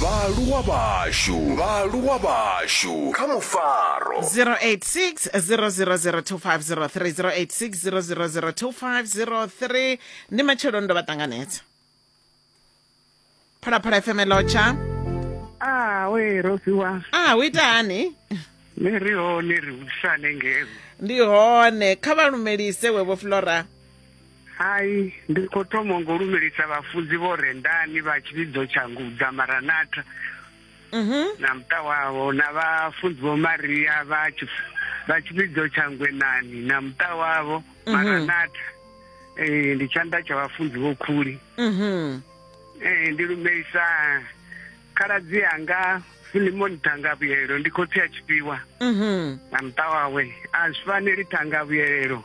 vhaaluwa vhashu vhaaluwa vhashu kha mufaro 086 000 2503 086 000 2503 ndi matshelo ndo vha ṱanganedza phalaphala fm lotsha Ah, we Rosiwa. ah hu ita hani Ni ri hone ri vhusane ngeo. ndi hone kha vha lumelise wevho flora Hai, ndi khou thoma ngo lumelisa vhafunzi vho rendani vha tshivhidzo tsha ngudza maranatha mhm. na muṱa wavho na vhafunzi vho maria vha tshivhidzo tsha ngwenani na muṱa wavho mhm. maranatha ee ndi tshanḓa tsha vhafunzi vho khuli mhm. ee ndi lumelisa khaladzi anga filimoni thangavhuyelelo ndi khotsi a tshifhiwa na muṱa wawe a zwi faneli thangavhuyelelo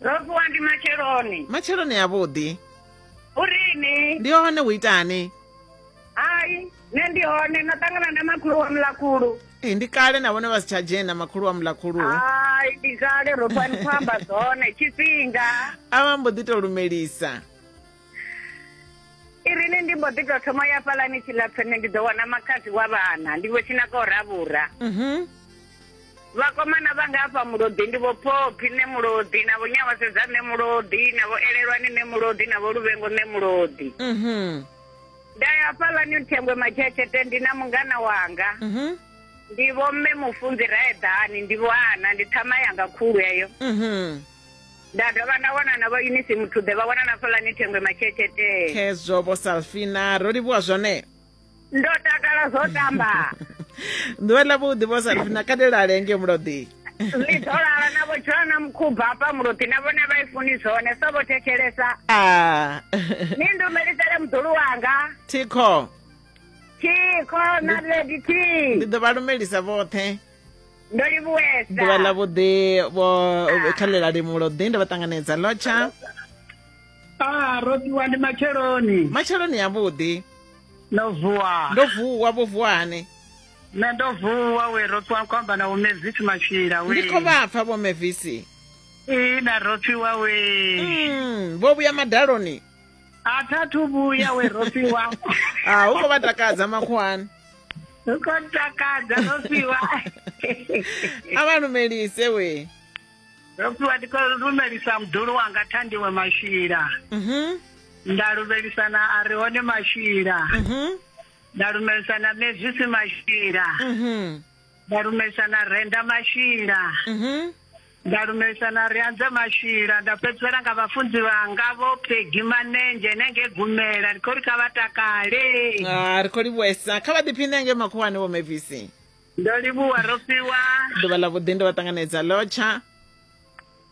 ro vuwa ndi matsheloni matsheloni avhuḓi urini ndi hone hu itani hai nṋe ndi hone na ṱangana na makhulu wa mulakhulu ee ndi kale na vhone vha si tsha dzhena makhulu wa mulakhulu hai ndi kale ro fani khou amba zwone tshifhinga a vha mbo ḓi to lumelisa irini ndi mbo ḓi tou thoma ya fhalani tshilapfene ndi ḓo wana makhadzi wa vhana ndi vho tshinaka u ravhura mhm. vhakomana vha nga afha mulodi ndi vho phophi nṋe mulodi na vho nyawasedza nṋe mulodi na vho elelwani nṋe mulodi na vho luvhengo nṋe mulodi mhm. nda ya fhalani thengwe matshetshethe ndi na mungana wanga mhm. ndi vho mme mufunzi raeḓani ndi vho ana ndi ṱhama yanga khulu eyo nda dovha nda wana na vho unisi muthuḓe vha wana na fulani thengwe matshetshetee khezwo vho salfina ro livhuwa zwone ndo takala zwo tamba ḓuvha ḽa vhuḓi vho salfina kadelale nge muloḓi ḽi ḓo lala na vho dzula na mukhubva hafha muloḓi na vhone vha i funi zwone so vho thetshelesa ah. ni ndumelisele muḓulu wanga thikho thikho na lady t ndi ḓo vha lumelisa vhoṱhe ndo livhuwesa ḓuvha ḽa vhuḓi vho kha ḽe ḽa limulo ḓi ndo vha ṱanganedza lotsha a ro ṱuwa ndi matsheloni matsheloni avhuḓi ndo vuwa ndo vuwa vho vuwa hani nṋe ndo vuwa we ro ṱuwa khou amba na vho mevisi matshila we ndi khou vha pfa vho mevisi ina ro ṱuwa we mm, vho vhuya madaloni a tha thu vhuya we rofhiwa a hu khou vha takadza makhuwani hu khou takadza rofhiwa a vha lumelise we rofhiwa ndi khou lumelisa muḓulu wanga thandiwe mashila mhm. nda lumelisa na a ri hone mashila mhm. nda lumelisa na mezwisi mashila mhm. nda lumelisa na renda mashila mhm. nda lumelisa na ri anze mashila nda fhedzisela nga vhafunzi vhanga vho phegi manenzhe nenge gumela ri khou ri kha vha takale ah, ri khou livhuwesa kha vha ḓiphine nge makhuwani vho mevisi ndo livhuwa ro fhiwa ḓuvha ḽa vhuḓi ndo vha ṱanganedza lotsha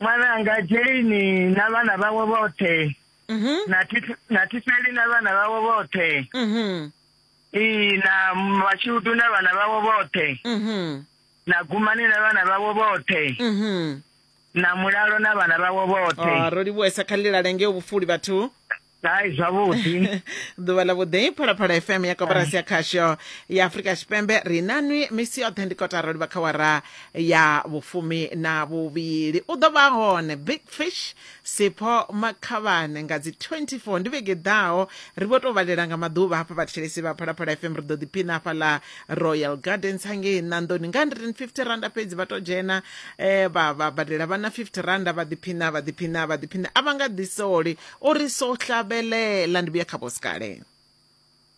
ṅwananga jeni na vhana vhawe vhoṱhe mhm. na thifeli na vhana vhawe vhoṱhe mhm. ee na mashudu na vhana vhawe vhoṱhe mhm. na gumani na vhana vhawe vhoṱhe na mulalo na vhana vhawe vhoṱhe ah, ro livhuwesa kha ḽilale ngeo vhufuli vhathu hai zwavhuḓi ḓuvha ḽa vhuḓi phalaphala fm ya koporasi ya khasho ya afurika tshipembe ri na nwi misi yoṱhe ndi kotara livha kha wara ya vhufumi na vhuvhili u ḓo vha hone big fish sipho makhavhane nga dzi 24 ndi vhege ḓaho ri vho tou vhalela nga maḓuvha hafha vhathetshelesi vha phalaphala fm ri ḓo ḓiphina hafhaḽa royal gardens hangei nandoni nga 150 randa fhedzi vha to dzhena eh, vha vha badela vhana 50 randa vha ḓiphina vha ḓiphina vha ḓiphina a vha nga ḓisoli o ri so hlabelela ndi vhuya kha vhosikale